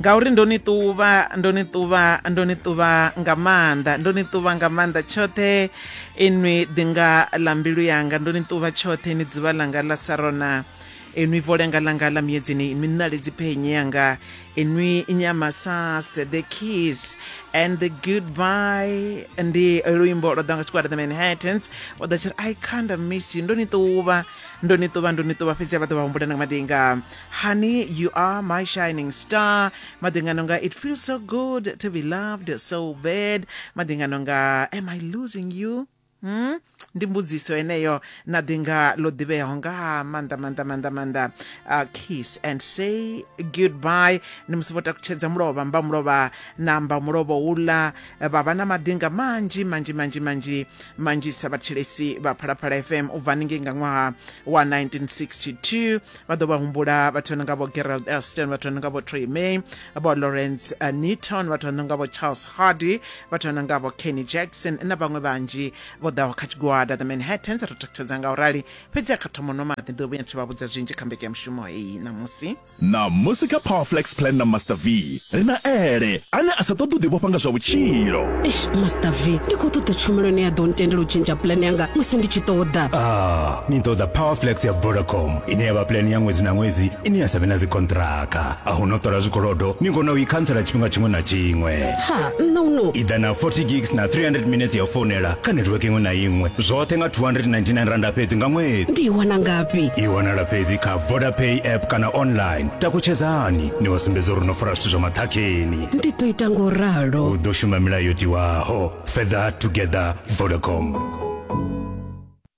ngauri ndo ni ṱuvha ndo ni ṱuvha ndo ni ṱuvha nga maanḓa ndo ni ṱuvha nga maanḓa tshoṱhe inwi ḓinga ḽa mbilu yanga ndo ni ṱuvha tshoṱhe ni dzivha ḽanga ḽa sarona enwi volenga langa la miedzini inwi nnale dziphenye yanga enwi nyamasase the kiss and the goodbye ndi luimbo lwa ḓa nga tshigwada the manhattans wa ḓa tshiri i kinda miss you ndo ni ṱuvha ndo ni ṱuvha ndo ni ṱuvha fhedzi vha ḓo vha humbula na nga maḓi nga honey you are my shining star maḓi nga nonga it feels so good to be loved so bad maḓi nga nonga am i losing you hmm? ndi mbudziso eneyo na ḓi nga ḽo ḓivheaho nga maanḓa maanḓa maanḓa maanḓa uh, kiss and say goodbye ndi musi vho takutshedza mulovha mba mulovha na mba mulovha uḽa vha vha na maḓinga manzhi manzhi manzhi manzhi manzhisa vhathetshelesi vha phalaphala fm u bva haningei nga ṅwaha wa 1962 vha ḓo vha humbula vhathu vha no nga vho gerald elston vhathu vha no nga vho troy may vho lawrence uh, newton vhathu vha no nga vho charles hardy vhathu vha no nga vho kenny jackson na vhaṅwe vhanzhi vho ḓaho kha tshigwada the manhattans ri takutshedza nga u rali fhedzi a kha thoma nwa maḓi ndi ḓo vhuya thi vha vhudza zwinzhi kha mbekanyamushumo heyi ṋamusi ṋamusi kha powerflex plan na master v ri na ele ane a sa ṱoḓi u ḓivhofha nga zwa vhutshilo eish master v ndi khou ṱoḓa tshumelo ine ya ḓo ntendela u tshintsha plan yanga musi ndi tshi ṱoḓa ah ni ṱoḓa powerflex ya vodacom ine ya vha plan ya ṅwedzi na ṅwedzi ine ya sa vhe na dzikontraka a hu no ṱola zwikolodo ni kona u i khantsela tshifhinga tshiṅwe na tshiṅwe ha nṋe uno i ḓa na 40 gigs na 300 minutes ya u founela kha netiweke iṅwe na iṅwe zwoṱhe nga 299 randa fhedzi nga ṅwedzi ndi i wana ngafhi i wanala fhedzi kha vodapay app kana online takutshedzani ni wa sumbedza uri no fara zwithu zwa maṱhakheni ndi ḓo ita ngo ralo u ḓo shuma milayo yo tiwaho fedha together vodacom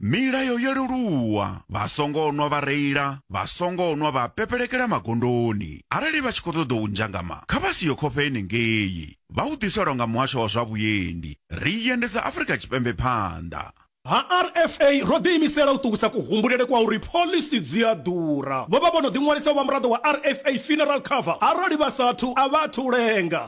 Milayo yo leluwa, vha songo nwa vha reila, vha songo nwa vha pepelekela magondoni. Arali vha tshi khou ṱoḓa u nzhangama, kha vha si ye khofhe henengei. Vha u ḓiselwa nga muhasho wa zwa vhuendi. Ri i endedza Afrika Tshipembe phanḓa. Ha RFA, ro ḓiimisela u ṱuwisa kuhumbulele kwa uri phoḽisi dzi a ḓura. Vho vha vho no ḓiṅwalisa u vha muraḓo wa RFA Funeral Cover. Arali vha sa athu, a vha athu u lenga.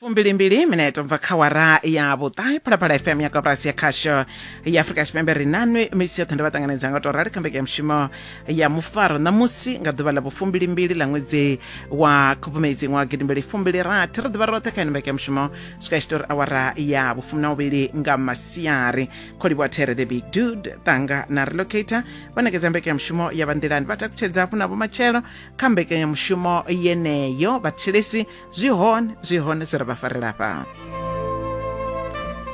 fumbilimbili minete bva kha wara ya vhuṱahe phalaphala fm ya koporasi ya khasho ya afurika tshipembe ri nanwi misi yoṱhe ndi vha ṱanganedza nga u tou rali kha mbekanyamushumo ya mufaro ṋamusi nga ḓuvha ḽa vhufumbilimbili ḽa ṅwedzi wa khubvumedzi ṅwaha gidimbili fumbili rathi ri ḓivha roṱhe kha ino mbekanyamushumo swika tshi tori awara ya vhufumi na vhuvhili nga masiari kholivhuwa there the big dude ṱanga na relocator vha nekedza mbekanyamushumo ya vhanḓilani vha takutshedza hafhu na vhomatshelo kha mbekanyamushumo yeneyo vhatshilesi zwi hone zwi hone zwi ra vha farela hafha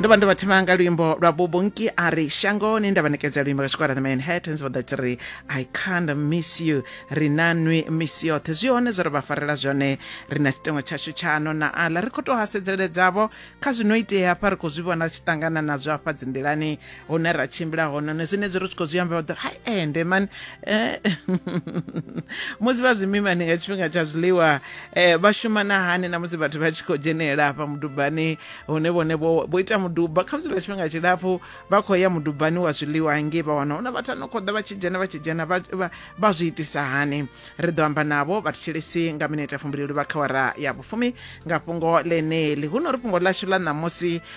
ndo vha ndo vha thima nga luimbo lwa bubunki a ri shangoni nda vha nekedza luimbo lwa tshikora the manhattans vha ḓati ri i can't miss you ri na nwi miss yoṱhe zwi hone zwo ri vha farela zwone ri na tshitengo tshashu tshano na aḽa ri khou tou hasedzeledzavho kha zwino itea hafha ri khou zwi vhona ri tshi ṱangana nazwo hafha dzinḓilani hune ra tshimbila hone ne zwenezwi ri tshi khou zwi amba vha ḓo hai ende mani eh, musi vha zwimimani nga tshifhinga tsha zwiḽiwa eh, vha shuma na hani na musi vhathu vha tshi khou dzhenelela hafha mudubani hune vhone vho ita muduba khamusi lwa tshifhinga tshilapfu vha khou ya mudubani wa zwiḽiwa hangei vha wana huna vhathu ano khou ḓa vha tshi dzhena vha tshi dzhena vha zwi itisa hani ri ḓo amba navho vha thetshelesi nga minete ya fumbilelo vha kha wara ya vhufumi nga fhungo ḽeneḽi huno ri fhungo ḽashu ḽa ṋamusi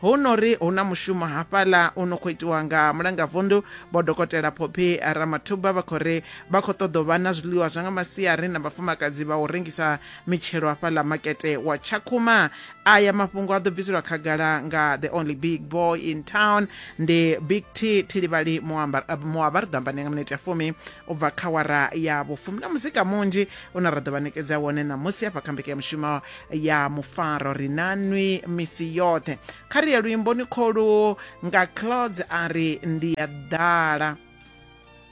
Hu no ri hu na mushumo hafhaḽa u no khou itiwa nga mulangavunḓu Vho Dokotela Phophi Ramathuba vha khou ri vha khou ṱoḓa u vha na zwiḽiwa zwa nga masiari na vhafumakadzi vha u rengisa mitshelo hafhaḽa makete wa Tshakhuma. Aya mafhungo a ḓo bviselwa khagala nga the only big boy in town, ndi Big T Thilivhali Muabar Muabar ri ḓo amba nae nga minete ya fumi. u bva kha wara ya vhufumi na muzika munzhi une ra ḓo vha nekedza wone ṋamusi hafha kha mbekanyamushumo ya mufaro ri na nwi misi yoṱhe kha ri ya luimboni kholu nga clods a ri ndi ya ḓala